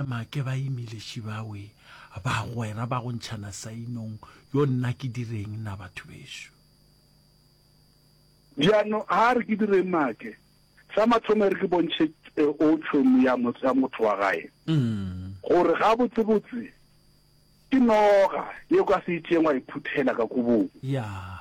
Make ba imile šibawe bagwera ba go ntšhana sainong yo nna ke direng na batho bešo. Bjano ha re ke direng make. Sa mathomo ere ke bontšhe o tšhomi ya motho wa gae gore gabotsebotse ke noga ye o ka se itšeng wa e phuthela ka kobong. Yeah.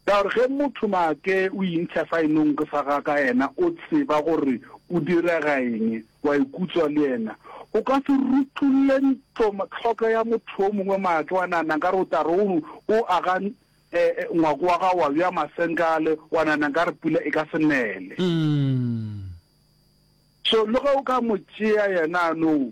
Ka gore ge motho maake o intšha saenonke sa ga ka yena o tseba gore o direga eng, o a ikutswa le yena. O ka se rutolle ntlo tlhoko ya motho yo mongwe maake wa nahana nkare o tla re o o aga ngwako wa gago wa bea masenkale wa nahana nkare pula e ka se nele. So le ge o ka mo tšea yena a no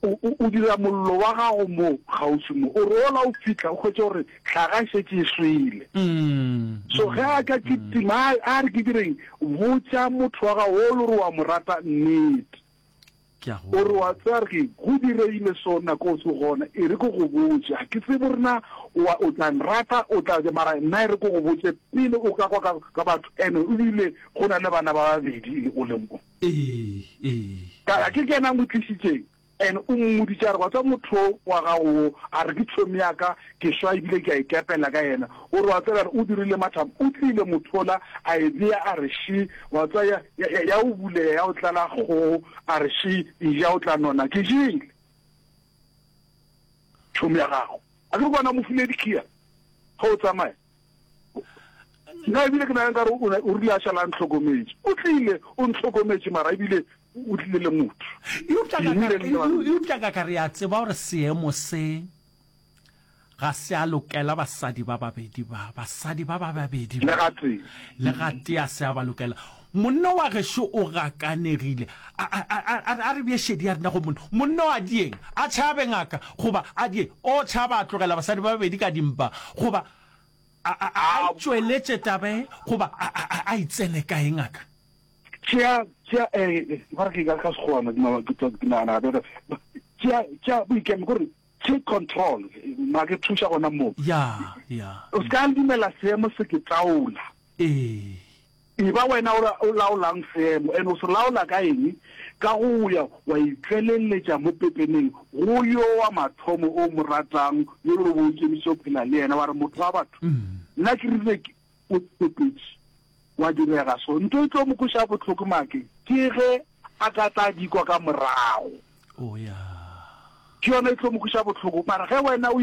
O, o, o dira mollo wa gago mo kgauswi mo, o rola o fihla, o hwetše gore hlaga e šetše e swele. So ge a tla ke tima, a, a re ke direng, botša motho wa gago o le gore o a mo rata nnete. Ke a go. O re wa tseba re go direile so nako o se gona, e re ke go botše, ga ke tsebe gore na o a, o tla nrata, o tla ja, mara nna e re ke go botše pele o ka kwa ka, ka batho, ene ebile go na le bana ba babedi le o le mo. Ee, ee. Ka ya ke kena mo tlišitšeng and o mmoditše a re wa tswa motho wa gago wo a re ke tshomi ya ka ke swa ebile ke a ikepela ka yena o re wa tswa re o dirile matham o tlile mothola a e beya a re shi wa tswa ya, ya, ya, ya o buleya ya o tlala kgogo a re shi e ja o tla nona ke jile tshomi ya gago a ke re bona mo file dikhiya ge o tsamaya nna ebile ke nageng ka gore o rile a šala a ntlhokometse o tlile o ntlhokometse mara ebile o tlile le motho eupša ka ka re ya tseba gore seemo se ga se a lokela basadi ba babedi ba basadi ba ba babedi ba le gatea se a ba lokela Monna wa gešo o gakanegile. A, a, a, a, a, a re bje šedi ya rena go monna. Monna o a dieng, a tšhabe ngaka, goba, a die, o tšhaba a tlogela basadi ba babedi ka dimpa, goba, a, a, a, a itšweletše taba e, goba, a, a, a, a e tsene kae ngaka? Tšea, tšea, eh, ba re ke ka, ka Sekgowa, ma, ma, ke, ke, ke nagana gape re, tšea, tšea boikemo, ko re, take control, ma ke thuša gona moo. Ya, ya. O se ka dumela seemo se ke taola. Ee, Eba wena o laolang seemo, and o se laola ka eng? Ka go ya wa itšweleletša mo pepeneng go yo wa mathomo o mo ratang, yo e lego gore o ikemišitše go phela le yena, wa re, Motho wa batho, nna ke rile ke o tshepetše, gwa direga so. Ntho e tlo mo kweša bohloko make ke ge a ka tla di kwa ka morago, ke yona e tlo mo kweša bohloko. Mara ge wena o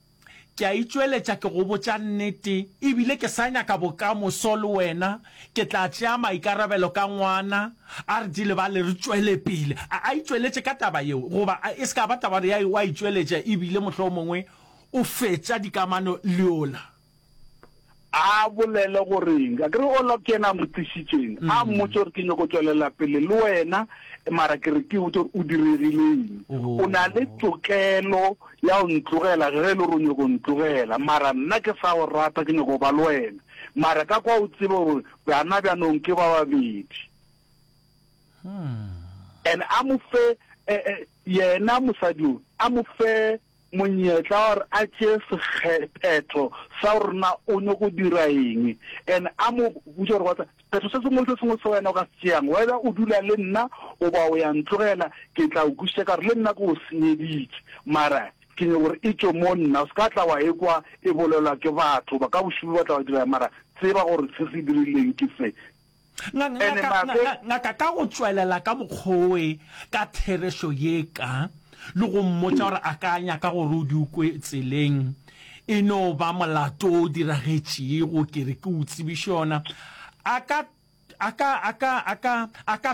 Ke a itšweletša ke go botša nnete, e bile ke sa nyaka bokamoso le wena. Ke tla tšea maikarabelo ka ngwana, a re di lebale re tšwele pele. A a itšweletše ka taba yeo, goba a e se ka ba taba ya o a itšweletša e bile mohlomongwe o fetša dikamano le yola. A bolele gore eng? A ke re Olaf ke yena a mo tlišitšeng, a mmotše gore ke nyoko tšwelela pele le wena, mara ke re ke botse gore o diregile eng. O na le tokelo ya go ntlogela ge e le gore o nyoko ntlogela, mara nna ke sa go rata, ke nyoko ba le wena. Mara ka kwa o tsebe gore bana bjanong ke ba babedi. And a mo fe, yena mosadi o, a mo fe monyetla wa gore a tšee sekgephetho sa gore na o nyoko go dira eng and a mo botša gore whatsa sephetho se sengwe le se sengwe se wena o ka se tšeang whether o dula le nna goba o ya ntlogela ke tla o kwišiša ka gore le nna ke o senyeditše mara ke nyoko gore e tšwe mo nna o se ka tla wa e kwa e bolelwa ke batho ba ka bošubu ba tla wa dira mara tseba gore se se dirileng ke se Ngaka ka go tšwelela ka mokgoe ka therešo ye ka, le go mmotša gore a ka nyaka gore o di o kwe tseleng, e no ba molato o diragetšego, ke re ke o tsebiše ona, a ka, a ka, a ka, a ka, a ka